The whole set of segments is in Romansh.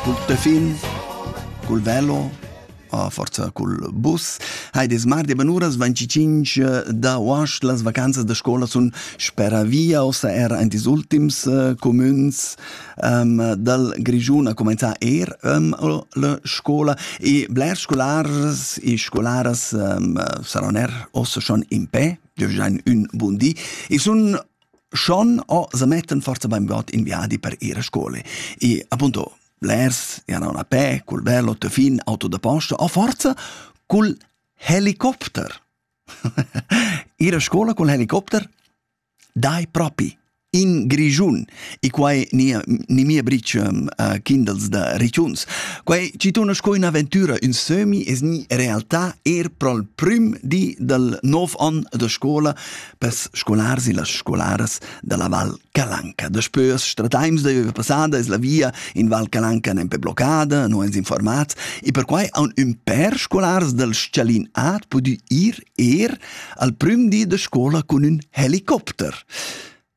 cul tefin, cul velo, a forza cul bus. Heides mardi benuras 25 da uasch las vacanzas da scola sun spera via, ossa er aint ils ultims uh, comüns um, dal Grischun a comenzar er um, la scola e blers scolars e scolaras um, saron er ossa schon in pe, dürfjan ün bun di e sun Schon ho se mettan forsa bainbod in viadi per ir a scola e appunto blers i han auna a pè cul velo da fin auto da posta o forsa cul helicopter. ir a scola cul helicopter dai propi in Grischun e quai nia ni mia bricia uh, kindels da Richuns. Quai ci tuna sco un'avventura in semi es ni realtà er prol prüm di dal 9 on da scola pes scolars e las scolaras dalla Val Calanca. Daspö as stradains da üva passada es la via in Val Calanca nempe bloccada, no ens informats e perquai haun ün pèr scolars dal Schalin A pudü ir eir al prüm di da scola cun ün helicopter.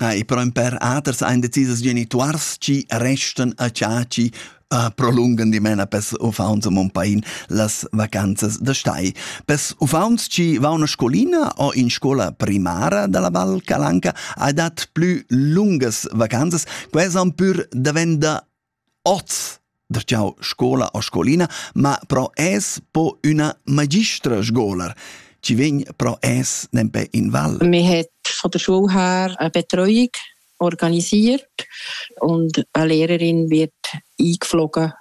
Ah, e però in per aters ein decisas genituars chi restan a ciaci uh, prolungan dimena pes ufaunts a Mompain las vacanzas da stai. Pes ufaunts ci va una scolina o in scola primara dalla Val Calanca ha dat plü lungas vacanzas, quai san pür davenda Oz dastg'jau scolar u scolina, ma però es po üna magistra scolar, chi vegn però es nempe in val. Mi het von der Schule her eine Betreuung organisiert und eine Lehrerin wird eingeflogen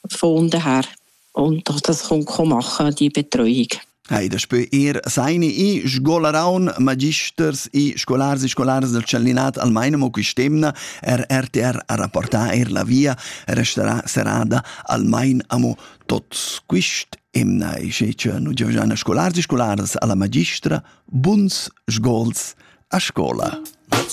von unten her. und dass das Runkomacher die Betreuung. Ei daspö er seine i scolaraun magisters i scolars e scolars del Cellinat almaina mo quist'emna er RTR a rapportar er la via restarà serada almain amo tots quist emna e sche che nu giovgiana scolars e scolars alla magistra buns sgols a scola.